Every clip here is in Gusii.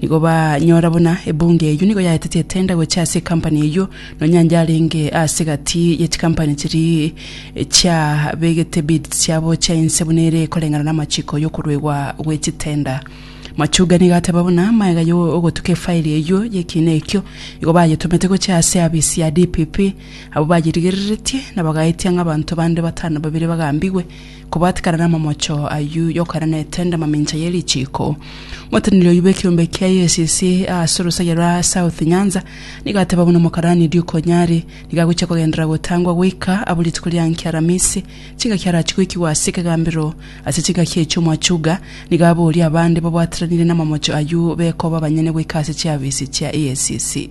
Nigo banyora buna ebunga eyio nigo yaetete etenda gochia ase ekampani eyio, nonya onde arenge ase egati ye chikampani chiria chiabegete bids chiabo chia inse buna ere koreng'ana namachiko yokoruegwa gwe chitenda. Machuga nigo ateba buna magega yo ogotuka efairi eyio yekiina ekio, igo bayetomete gochia ase eabisi ya DPP, abwo bayerigereretie na bagaetia ng'a abanto bande batano babere bagambigwe, Kobatikana n'amamocho ayio y'okoenda na etenda mamincha ye richiiko, omoteneneri oyio bw'ekeombe kia EACC ase orosaiyo rwa South Nyanza nigo ateba buna Omokarani Duke Onyari nigo agochia kogenderera gotangwa goika abo rituko ria nki Aramisi chingaki arachie goikigwa ase ekegambero ase chingaki echio Mwachunga nigo aborie abande babwatiranire n'amamocho ayio bekoba abanyene goika ase chiafisi chia EACC.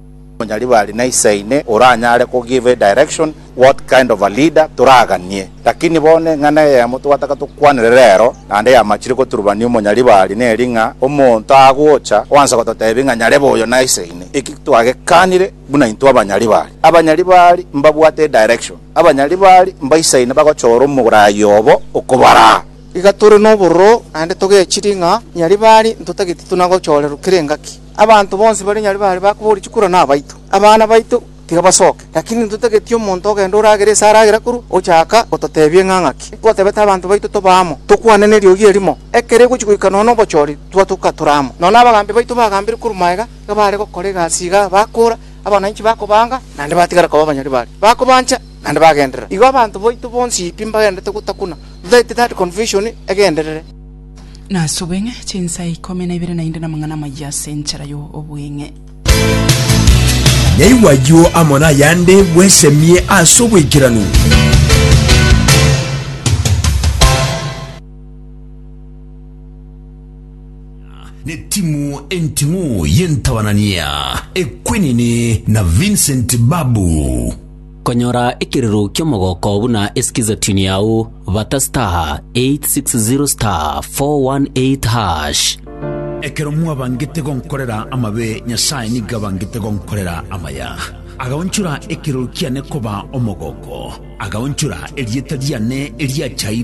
Nonya riba ari na isaine oranyare ko give direction what kind of a leader toraganie. Lakini bono eng'ana eyemo twataka tokwanere rero, naende yamachire goturubania omonya riba ari neri ng'a omonto agocha oanse gototebia ng'a nyarebe oyo na isaine. Eki twagekanire buna intwe abanya riba ari. Abanya riba ari mbabwate edirection. Abanya riba ari mbaisaine bagochora omoraai obo okobaraa. Iga tore nobororo naende togechirie ng'a nyariba ari ntotageti tuna gochorerwa kera engaki. Abanto bonsi baria nyare baare bakoboria chikura nabaito, abana baito tiga basoke, lakini intwe totageti omonto ogende oragere ase aragera korwa ochaka gototebia ng'a ng'aki. Twatebete abanto baito tobe amo, tokwane neriogi erimo, ekero egochi goika nonya nobochori, twatoka tore amo. Nonya abagambi baito bagambire korwa magega, iga baare gokora egasi igaa, bakora, abananchi bakobaanga, naende batigara koba abanyari baria, bakobancha, naende bagenderera. Igo abanto baito bonsi pi mbagendererete gotakuna, totageti that confusion egenderere. Nas'obweng'e, chinsa ikomi na ibere naende namang'ana amayia as'enchera y'obweng'e. Naigwe ayio amo nayande bwesemie as'oboikeranu. timu enting'u y'entabanania ekwenini na Vincent Babu. Konyora ekerero ki'omogooko buna esikizatunio yao, bata star 860 star 418 hash. Ekero mwabangete gonkorera amabe, Nyasae nigo abangete gonkorera amaya. Agaonchora ekerero kiane koba omogooko, agaonchora erieta riane eriachaire.